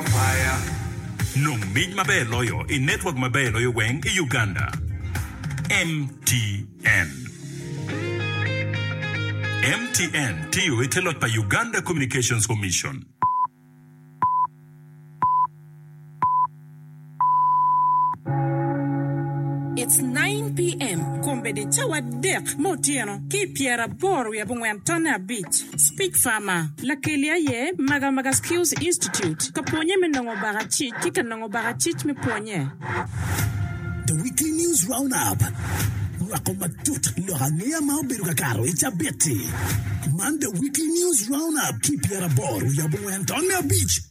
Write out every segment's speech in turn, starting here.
Kwaya, Nong mic maber loyo i network maber loyo weng i Uganda, MTN. MTN tiyo i te loc pa Uganda Communications Commission. It's nine PM, kombeddi cawa adek me otyeno ki i pyeraboro wiye abongwen tonne abic, Speech Farmer. Lakeli aye Magamaga Skills Institute ka pwonye me nongo baka cic ki ka nongo baka cic me pwonye. The Weekly News Roundup rwako matut lok angeya ma obedo ka kato i cabit-ti. Man The Weekly News Roundup ki i pyeraboro wiye abongwen tonne abic.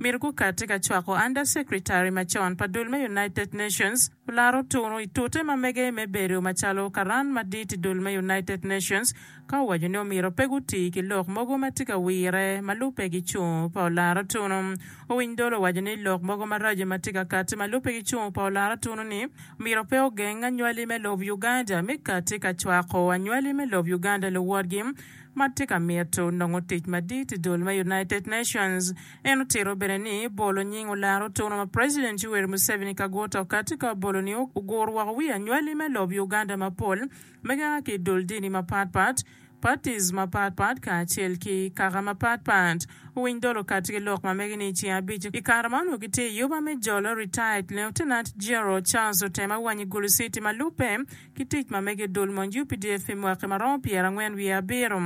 myero gukati ka cwako Under Secretary macon pa dul me United Nations olaro tunu i tute ma mege me bedo macalo karan madit i dul me United Nations ka owaco ni omyero pe guti ki lok mogo ma tye ka wire ma lubbe gicung pa olaro tunu. Owiny dolo owaco ni lok mogo maraco ma tye ka kati ma lubbe gicung pa olaro tunu ni myero pe ogeng anywali me lob Uganda me kati ka cwako anywali me lob Uganda luwotgi ma tye ka mito nongo tic madit i dul me United Nations. En otito bene ni bolo nying olaro tunu ma President Yoweri Museveni ka guto kati ka obolo ni oguro woko wi anywali me lob Uganda mapol ma gia ki i dul dini mapat pat, parties, mapat pat kacel ki kaka mapat pat. Owiny dolo kati ki lok ma mege ni i ceng abic i kare ma onongo gitye i yuba me jolo, retired Lieutenant General Charles Otema Wanyi Gulusiti ma lubbe, Ki tic ma mege i dul mony updf pi mwaki ma romo pyera angwen wiye abiro.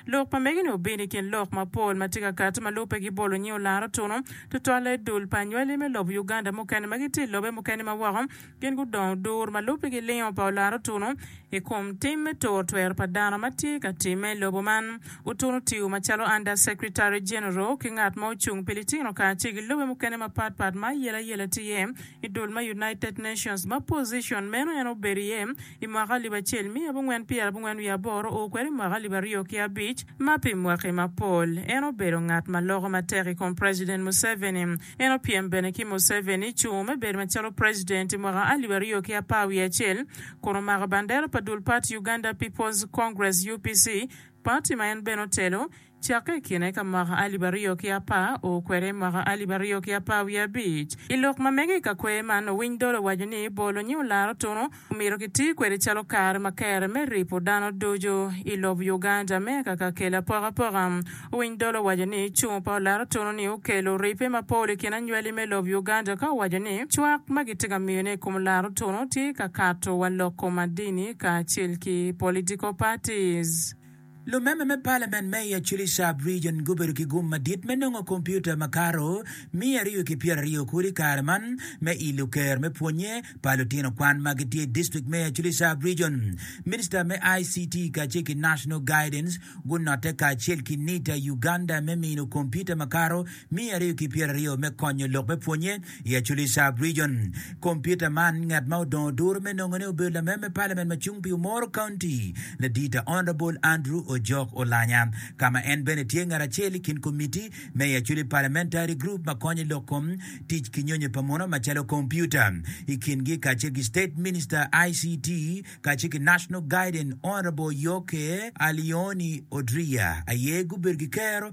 Lok pa mege ni obino i kin lok ma pol ma tye ka kati ma lube gi bolo nying olaro tunu tutwalle i dul pa anywali me lobo Uganda mukene ma gitye i lobe mukene ma woko gin gudongo dur ma lube gi lingo pa olaro tunu i kom tim me turo twero pa dano ma tye ka timme i lobo man utunu tiyo macalo Under Secretary General ki ngat ma ocung pi litino kacel ki lobe mukene ma pat pat ma ayelayela tye iye I dul ma United Nations ma pozicon meno en obedo iye i mwaka alip acel miya abongwen pyera abongwen wiye aboro oo kwede i mwaka alip aryo ki abic ma pi mwaki mapol en obedo ngat ma loko matek i kom President Museveni. En opyem bene ki Museveni cungo me bedo macalo President i mwaka alip aryo ki apar wiye acel kun omako bandera pa dul pati Uganda People's Congress, UPC, pati ma en bene otelo Cakke i kine ka mwaka alip aryo ki apar oo kwede i mwaka alip aryo ki apar wiye abic. I lok ma mege i ka kwer man, owiny dolo owaco ni bolo nyi olaro tunu omyero ki ti kwede calo kare ma kere me ripo dano ducu i lob Uganda me ka ka kelo apokapoka. Owiny dolo owaco ni cung pa olaro tunu ni okelo ripe ma pol i kin anywali me lob Uganda ka owaco ni cwak ma gi ti ka miyo ne i kom olaro tunu ti ka kato wa loko ma dini ka acel ki political parties. Lumember me Palament me i Acholi Sub Region gubedo ki gum madit me nongo kompiuta makato miya aryo ki pyera aryo kodi i kare man me ilo ker me pwonye pa lutino kwan ma gitye i district me Acholi Sub Region. Minister me ICT kacel ki National Guidance gunote kacel ki NITA Uganda me mino kompiuta makato Miya ariyo ki pyera aryo me konyo lok me pwonye i Acholi-Sha Region. Kompiuta man, ngat ma odongo duru me nongone obedo lamem me Parliament ma cung pi Umoro County, Ladita Honourable Andrew Ojok Olanya, ka ma en bene tye ngat acel i kin komitti me i Acholi Parliamentary Group ma konyo lok kom tic ki nyonyo pa muno macalo kompiuta i kingi kacel ki State Minister ICT kacel ki National Guidance Honourable Yoke Alioni Odria aye gubedo ki kero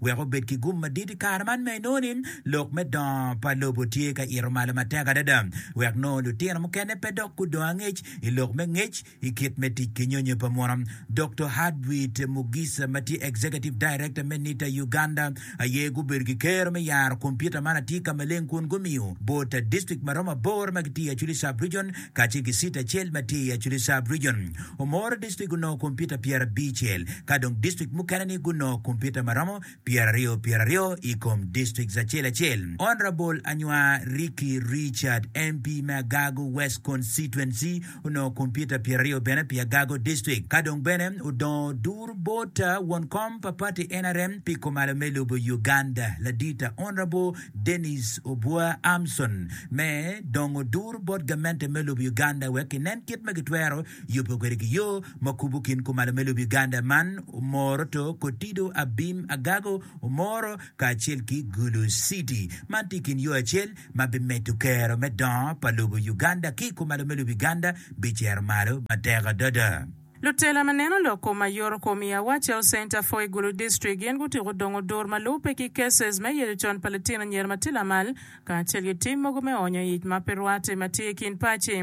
wek obed ki gum madit i kare man ma inongo ni lok me dongo pa lobo tye ka ito malo matek adada, wek nongo lutino mukene pe dok gudong angec i lok me ngec i kit me tic ki nyonyo pa muno. Doktor Hartwit Mugisa ma tye Executive Director me NITA Uganda aye gubedo ki kero me yaro kompiuta man atika maleng kun gumiyo bot district ma romo aboro ma gitye i Acholi Sub-Region kacel ki city acel ma tye i Acholi Sub Region. Omoro District gunongo kompiuta pyerabicel, ka dong district mukene-ni gunongo kompiuta ma romo pyeraryo pyeraryo i kom districts acel acel. Honourable Anywa Ricky Richard, MP me Agago West Constituency, onongo kompiuta pyeraryo bene pi Agago District. Ka dong bene odongo Duru Bota, won kom pa party nrm pi kumalo me lobo Uganda. Ladita Honourable. Denis Obua Amson me dongo duru bot gamente me lobo Uganda wek kinen kit ma gitwero yubo kwede ki yo ma kubo kin kumalo me lobo Uganda man Omoro to Kotido Abim Agago Omoro kacel ki Gulu City man tye ikin yo acel ma bimedo kero me dongo pa lobo Uganda ki kumalo me lobo Uganda bicero malo matek adada. Lutela ma neno lok kom ma yoro kom i Awa Cell Center, Foy Gulu District gin gutyeko dongo dur ma lubbe ki cases me yeco con pa litino anyira ma tye lamal kacel ki tim mogo me onyo ic ma pe rwatte ma tye i kin paci.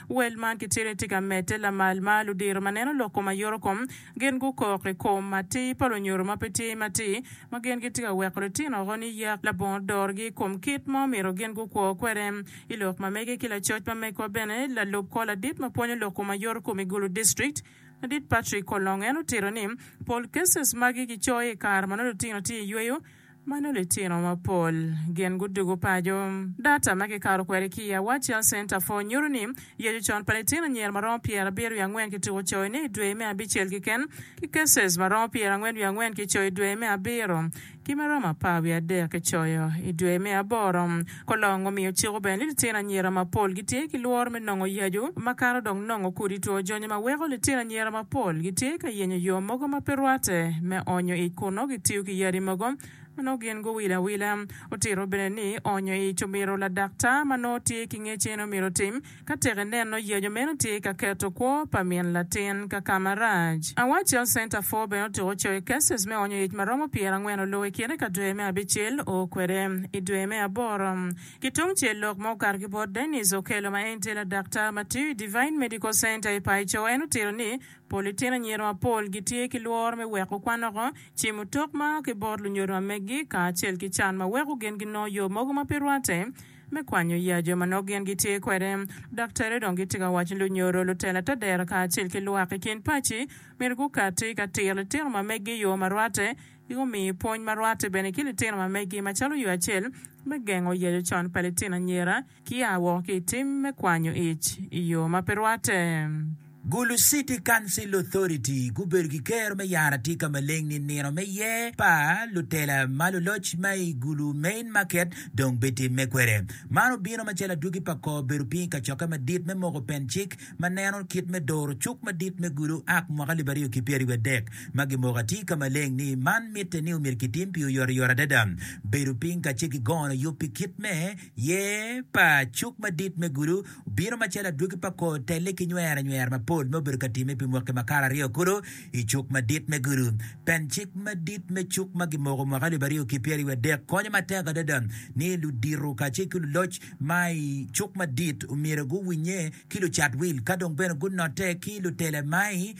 Wel man kitye ni tye ka medde lamal ma ludiro ma neno lok kom ma yoro kom gin gukok i kom atir pa lunyodo ma pe tye matir ma gin gitye ka weko litino woko ni yak labongo dorgi i kom kit ma omyero gin gukwo kwede. I lok ma mege ki lacoc ma megwa bene, lalub kor ladit ma pwonyo lok kom ayoto kom i Gulu District, Ladit Patrick Kolong en otito ni, Pol cases magi gicoyo i kare ma nongo lutino tye i yweyo ma nongo litino mapol gin gudugo paco. Data ma kikato kwede ki i Awar Child Center for nyuto ni yecu con pa litino anyira ma romo pyera abiro wiye angwen kituko coyone i dwe me abicel keken, ki cases ma romo pyera angwen wiye angwen kicoyo i dwe me abiro. Ki ma romo apar wiye adek kicoyo i dwe me aboro, Kolong omiyo ciko bene ni litino anyira mapol gitye ki lworo me nongo yacu makato dok nongo kodi two jonyo ma weko litino anyira mapol gitye ka yenyo yo mogo ma pe rwatte me onyo ic kun nongo gitiyo ki yadi mogo ma nongo gin guwilo awila. Otito bene ni onyo ic omyero ladaktar ma nongo tye ki ngecen omyero otim. Ka tek ineno yeco meno tye ka keto kwo pa min latin ka ka marac. Award Child Center for bene otuko coe cases me onyo yec ma romo pyera angwen oloo i kine ka dwe me abicel o kwede. I dwe me aboro, ki tungcel lok ma okato ki bot Dennis Okello ma en tye ladaktar ma tiyo i Devine Medical Center i Paico en otito ni pol litino anyira mapol gitye ki lworo me weko kwan oko, cimo otok ma a ki bot lunyodo ma meggi kacel ki can ma weko gin ginongo yo mogo ma pe rwatte. me kwanyo ya jo ma nongo gin gitye kwede. Ludaktari dong gitye ka waco ni lunyodo, lutela te dero kacel ki lwak i kin paci myero gukatti ka tiro litino ma meggi i yo ma rwatte ki gumi pwony ma rwatte bene ki litino ma meggi macalo yo acel me gengo yeco con pa litino anyira ki a woko ki i tim me kwanyo ic i yo ma pe rwatte. Gulu City Council Authority gubedo ki kero me yaro atika maleng ni nino me yer pa lutela ma luloc ma i Gulu Main Market dong bitimme kwede. Man obino macalo adwogi pa kor bedo piny i kacokke madit me moko pen cik ma neno kit me doro cuk madit me Gulu ak mwaka alip aryo ki pyeraryo adek ma gimoko atika maleng ni man mitte ni omyero kitim pi oyotoyot adada bedo piny ka ce gigono yub pi kit me yer pa cuk madit me Gulu bino macalo adwogi pa kor telle ki nywero anywera mapol ma obedo ka timme pi mwaki makato aryo kulu i cuk madit me gudo. Pen cik madit me cuk ma gimoko mwaka alip aryo ki pyeraryo adek konyo matek adada ni ludito kacel ki luloc ma i cuk madit omyero guwinye ki lucat wil ka dong bene gunote ki lutela ma i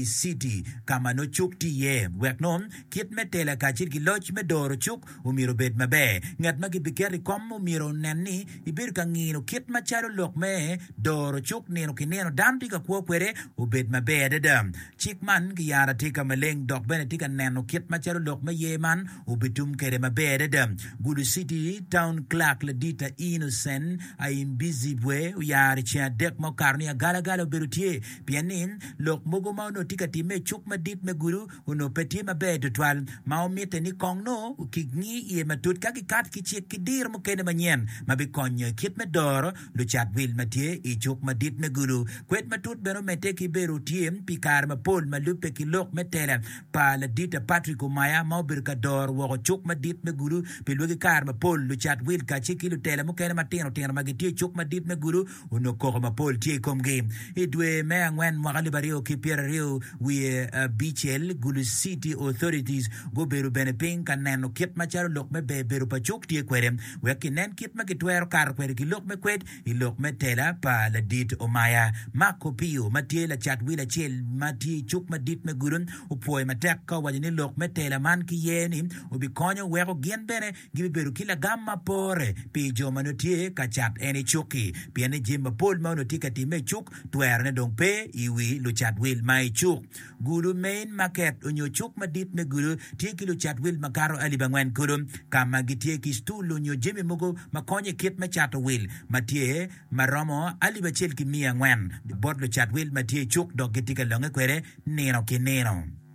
citi ka ma nongo cuk tye iye wek nongo kit me tela kacel ki loc me doro cuk Omyero obed maber. Ngat ma gibiketo i kom omyero onen ni ibedo ka ngino kit macalo lok me doro cuk nino ki nino dano tye ka kwo kwede obed maber adada. Cik man giyaro atika maleng dok bene tye ka neno kit macalo lok me ye man obitum kwede maber adada. Gulu City Town Clerk Ladita Innocent Aimbizibwe oyaro i ceng adek ma okato ni agalagala obedo tye pien ni lok mogo ma onongo tye ka timme i cuk madit me Gulu onongo pe tye maber tutwal ma omitte ni kong nongo kingi iye matut ka gikato ki cik ki diro mukene manyen ma bikonyo i kit me doro lucat wil ma tye i Cuk Madit me Gulu. Kwed matut bene omedde ki bedo tye pi kare mapol ma lubbe ki lok me tela pa Ladita Patrick Omaya ma obedo ka doro woko Cuk Madit me Gulu pi lwagi. Kare mapol, lucat wil kacel ki lutela mukene matino tino ma gitye i Cuk Madit me Gulu Onongo koko mapol tye i komgi. I dwe me angwen mwaka alip aryo ki pyeraryo wiye abicel, Gulu City Authorities gubedo bene piny ka neno kit macalo lok me ber bedo pa cuk tye kwede wek kinen kit ma kitwero kato kwede ki lok me kwed i lok me tela pa Ladit Omaya. Mark Opio ma tye lacat wil acel ma tye i cuk madit me Gulu opwoyo matek ka owaco ni lok me tela man ki ye ni obikonyo weko gin bene gibibedo ki lagam ma pore pi jo ma nongo tye ka cat en i cuk-ki, pien ni jami mapol ma onongo tye ka timme i cuk twerone dong pe i wi lucat wil ma i cuk. Gudo, main market, onyo cuk madit me gudo tye ki lucat wil ma kato alip angwen kulu, ka ma gitye ki stul onyo jami mogo ma konyo i kit me cato wil ma tye ma romo alip acel ki miya angwen bot lucat wil ma tye i cuk dok gitye ka longe kwede nino ki nino.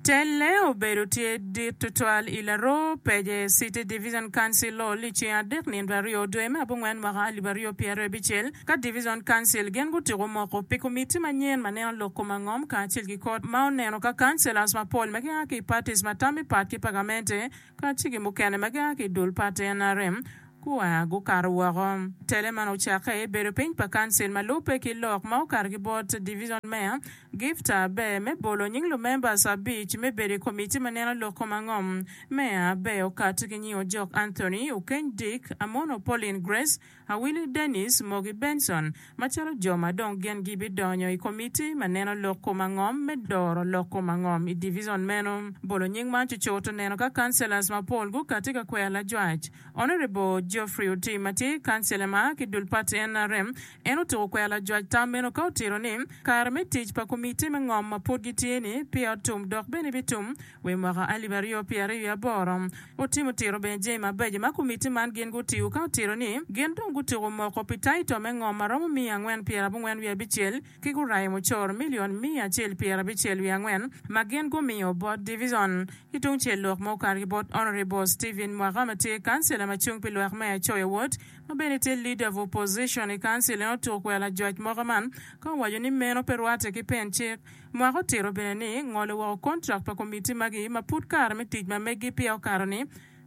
Telle obedo tye dit tutwal i laroo pece City Division Council Hall i ceng adek nino aryo dwe me abongwen mwaka alip aryo pyeraryo abicel ka Division Council gin gutyeko moko pi komitti manyen ma neno lok kom angom kacel ki kot ma oneno ka councillors mapol ma gia ki i parties ma tammi pat ki pagamente Ka ci ki mukene ma gia ki i dul pa TNRM gua gukato woko. Tele man ocakke i bedo piny pa Kancil ma lubbe ki lok ma okato ki bot Division Mayor Gift Aber me bolo nying lumembers abic me bedo i komitti ma neno lok kom angom. Mayor Aber okato ki nying Ojok Anthony, Okeny Dick, Amono Pauline Grace, Awinyo Dennis Mogi Benson macalo jo ma dong gin gibidonyo i komitti ma neno lok kom angom me doro lok kom angom i divison meno. Bolo nying man cucut oneno ka Councillors mapol gukatti ka kwero lajwac. Honourable Geoffrey Otim ma tye Councillor ma a ki dul pati nrm en otuko kwero lajwac tam meno ka otito ni kare me tic pa komitti me ngom ma pud gitye ni peya otum dok bene bitum Wi mwaka alip aryo pyera i aboro, otimo tiro bene jami mabeco ma komitti man gin gutiyo ka otito ni gin dong gutyeko moko pi taito me ngom ma romo miya angwen pyera abongwen wiye abicel ki gurayo mucoro milion miya acel pyera abicel wiye angwen ma gin gumiyo bot divizon. Ki tung cel lok ma okato ki bot Honourable Stephen Mwaka ma tye kancila ma cung pi lwak Meya Choi Awot ma bene tye Leader of Opposition i kancil en otuko kwela jwac moka man ka owaco ni meno pe rwatte ki pen cik Mwaka otito bene ni ngolo woko kontrak pa komitti magi ma pud kare me tic ma meggi peya okato ni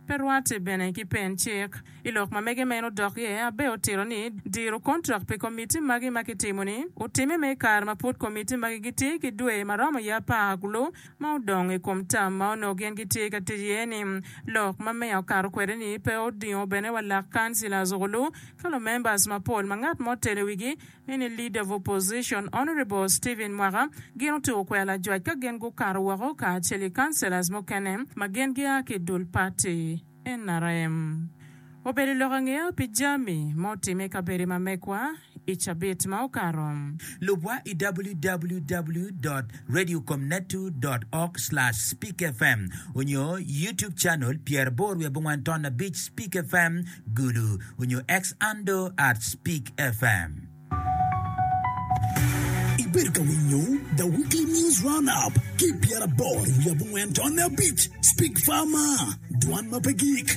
pe rwatte bene ki pen cik. I lok ma mege ma en odok iye, Abe otito ni diro kontrak pi komitti magi ma kitimo-ni otime me i kare ma pud komitti magi gitye ki dwe ma romo iye apar ku lub ma odong i kom tam ma onongo gin gitye ka tic iye-ni. Lok ma meya okato kwede-ni pe odingo bene wa lak kancilas olu ka lumembers mapol ma ngat mo telo i wigi Mini Leader of Opposition Honourable Stephen Mwaka gin otuko kwena lajwac ka gin gukato woko kacel ki Councillors mukene ma gin gia ki idul party nrm. Obedo i lok angeya pi jami ma otimme i kabedo ma mekwa i cabit ma okato. Lubwa i www dot radio com net two dot org slash speak fm onyo YouTube channel pyeraboro wiye abongwan ton abic speak fm. Gulu, onyo Xando at Spik FM. Ibedo ka winyo The Weekly News Roundup ki pyeraboro wiye abongwen tonne abic, Spik Fama, dwan ma pe gik.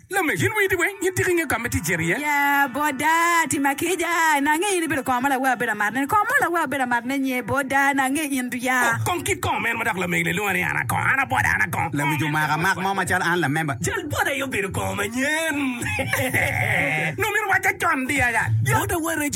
Lamek, in winyi tye weng? In tika ingeyo ka ma tye cito iye? Ya boda, tim akica, na angeyo in ibedo kongo ma lawe abedo amato ne. Kongo mo lawe abedo amato ne nye boda, na angeyo in tu ya. Oh, kong kit kongo meno ma dok lamek-ni lwongo ni an a kongo, an a boda, an a kongo. Lawic omaka amak mo macalo an lamemba. Cal boda aye obedo kongo manyen. Nongo myero owacca con diaga. Boda wa rec.